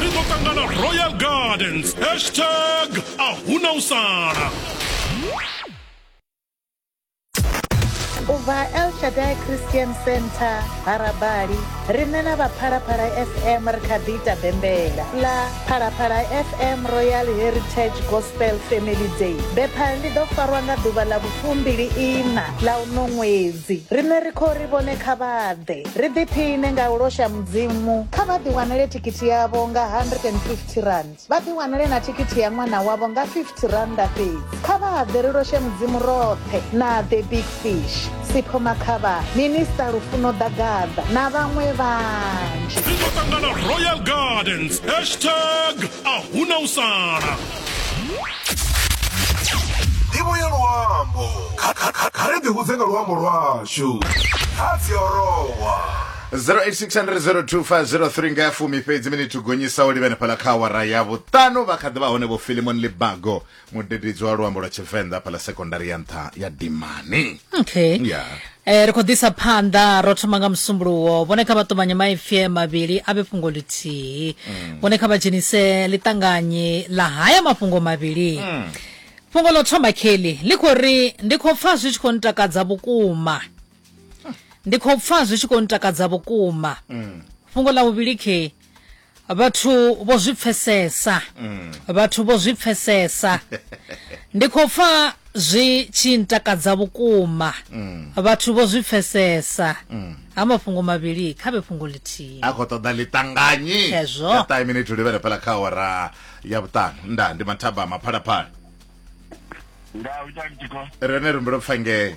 ri ḓo ṱangana royal gardens hashtag a huna u sala u bva el shadai christian center harabali riṋe na vha phalaphala fm ri kha ḓi ita bembela ḽa phalaphala fm royal heritage gospel family day bepha ḽi ḓo farwa nga ḓuvha ḽa vhufumbili ina ḽa uno ṅwedzi riṋe ri khou ri vhone kha vhaḓe Ri ḓiphiṋe nga u losha Mudzimu. Kha vha ḓiwanele thikhithi yavho nga R150. Vha ḓiwanele na thikhithi ya ṅwana wavho nga R50 fhedzi. Kha vha ḓe ri loshe Mudzimu roṱhe na The Big Fish, Sipho Makhavha, Minista Lufuno Ḓagaḓa na vhaṅwe vhanzhi. Ri ḓo ṱangana Royal Gardens, hashtag Ahuna u sala. ndivho ya luambo Kha- kha- kha- kha ri ḓihudze nga luambo lwashu kha dziorowa 0860025003 nga ya fumi fhedzi minithu gonyisa u livhene phala kha awara ya vhuṱanu vha kha ḓivha hone vho filimon libago mudededzi wa luambo lwa tshivenḓa phala sekondari ya nṱha ya dimani okay ya E, ri khou ḓisa phanḓa ro thoma nga musumbuluwo vhone kha vha ṱumanye maipfi mavhili a vhe fhungo ḽithihi mm. vhone kha vha dzhenise ḽiṱanganyi ḽa haya mafhungo mavhili mm. fhungo ḽo thoma kelly ḽi khou ri ndi khou pfa zwi tshi khou ntakadza vhukuma ndi khou pfa zwi tshi khou ntakadza vhukuma mm. fhungo ḽa vhuvhili khe Vhathu vho zwi pfesesa. Vhathu vho zwi pfesesa. Ndi khou pfa zwi tshi ntakadza vhukuma. Vhathu vho zwi pfesesa. Ha mafhungo mavhili kha vhe fhungo ḽithihi. a khou ṱoḓa ḽiṱanganyi Hezwo. ya ṱahe minithu livhele fhala kha awara ya vhuṱanu nda ndi mathabama phalaphala Nda u tani tiko. rene ri mbulo pfangee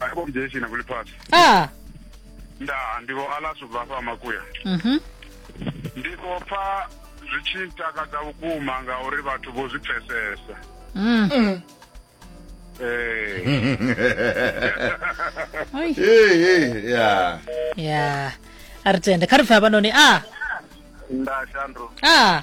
akobudeshina kuli phasi ah nda ndiko alaso bva fha makuya mhm ndiko pfa zwi tshi ntakadza vhukuma ngauri vhathu vho zwi pfesesa mm ee Oi. Hey, hey, yeah. ya a ri tende kha ri pfe havhanoni a nda shandro a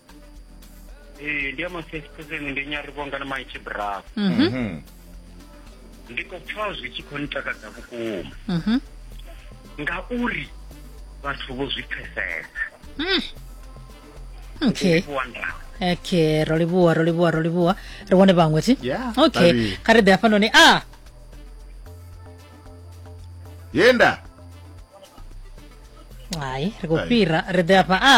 ee ndi ya masesi khuzeni ndi nyarivhonga na maitshi bravo Mhm. Mhm. ndi khou pfa zwi tshi khou ntakadza vhukuma Mhm. ngauri vhathu vho zwi pfesesa Mm. okay livhuwa ndau okay ro livhuwa ro livhuwa ro livhuwa ri vhone vhaṅwe thi Yeah, okay vhavhili. kha ri ḓe hafhanoni a yenda hai ri khou Hai. fhira ri ḓe hafha a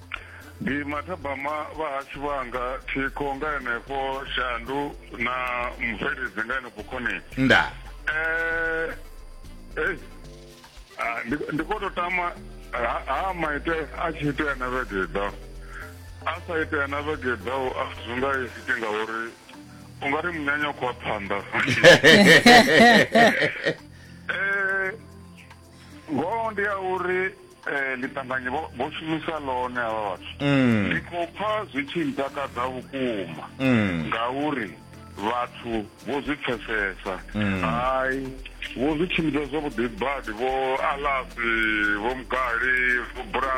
ndi mathabama vha hashu vhanga thikho nga henefho shandu na mubveledzi nga henefho khoni nda eh eh ah, ndi ndi khou tou tama ha ha maite a tshi itea na vhege i ḓaho a sa itea na vhege i ḓaho a zwi nga iti ngauri u nga ri munyanya u khou wa phanḓa Eh, ngoho ndi ya uri eh, ḽiṱanganyi vho vho shumisa ḽone havha vhathu Mm. ndi khou pfa zwi tshi ntakadza vhukuma Mm. ngauri vhathu vho zwi pfesesa Mm. hai vho zwi tshimbidza zwavhuḓi badi vho alasi vho mugali vho bra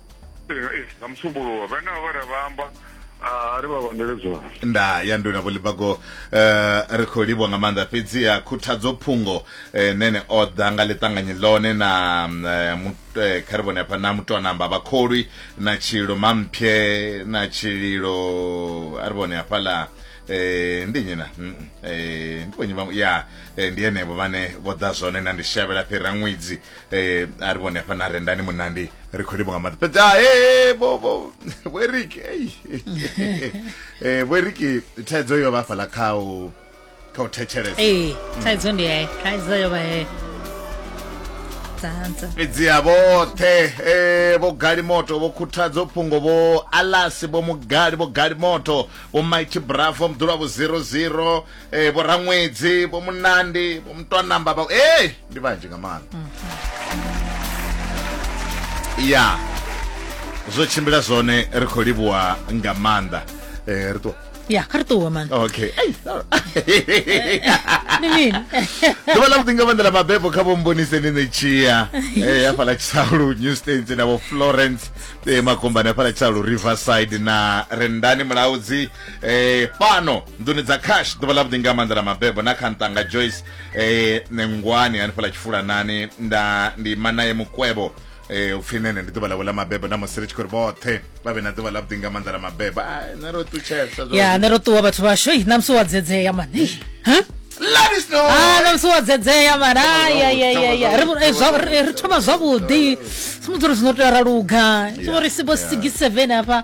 nga musumbuluwo vhane vha vha vha amba ri vha vhandele zwone nda ya nduna vholibago eh, ri khou livhwa nga maanḓa fhedziha khuthadzo phungo eh, nene o ḓa nga ḽiṱanganyi ḽone na mm, eh, eh, kha ri vhone hafha na mutonamba vhakholwi na tshililo mamphye na tshililo a ri vhone hafhaḽa eh ndi nyina mm, eh ndi vhonyi vhaṅwe ya eh, ndi henevho vhane vho ḓa zwone na ndi shavhela fhira ṅwedzi eh a ri vhone hafha na rendani munandi ri khou livha nga maḓi fhedzi ah, eh, vho vho vhoeriki eh vhoeriki thaidzo yo vha fhala kha u kha u thetshelesa ee thaidzo ndi ye thaidzo yo vha ye dzanza fhedzi ha vhoṱhe eh vho gali moto vho khuthadzo phungo vho alasi vho mugali vho gali moto vho mighty bravo mdula vho 00 eh vho raṅwedzi vho munandi vho mutwanamba vha eh ndi vhanzhi nga maanḓa mm -hmm. ya zwo tshimbila zwone ri khou livhuwa nga maanḓa eh ri ṱuwa ya kha ri ṱuwe man okay ndi mini ḓuvha ḽa vhuḓi nga maanḓa ḽa mabebo kha vho mbonise ni ṋetshia eh, ya fhala tshisaulu new states na vho florence eh, makombani ya fhala tshisaulu riverside na rendani mulaudzi eh, fhano nḓuni dza cash ḓuvha ḽa vhuḓi nga maanḓa ḽa mabebo na kha ntanga joyce eh, nengwani hanefhaḽa tshifulanani nda ndi manaye mukwebo eh, upfhi nene ndi ḓuvha ḽavho ḽa mabebo na musi ri tshi khou ri vhoṱhe vha vhe na ḓuvha ḽa vhuḓi nga maanḓa ḽa mabebo Ai, nṋe ro ṱutshesa zwa- ya nṋe ro ṱuwa vhathu vhashu ei ṋamusi wa dzedzea mani Let us know. Ah, ṋamusi wa dzedzea mani ayayayaya ri eh, zwa- ri- ri thoma zwavhuḓi sumudzi uri zwino tea ra luga sumbo ri sibo sigi seven hafha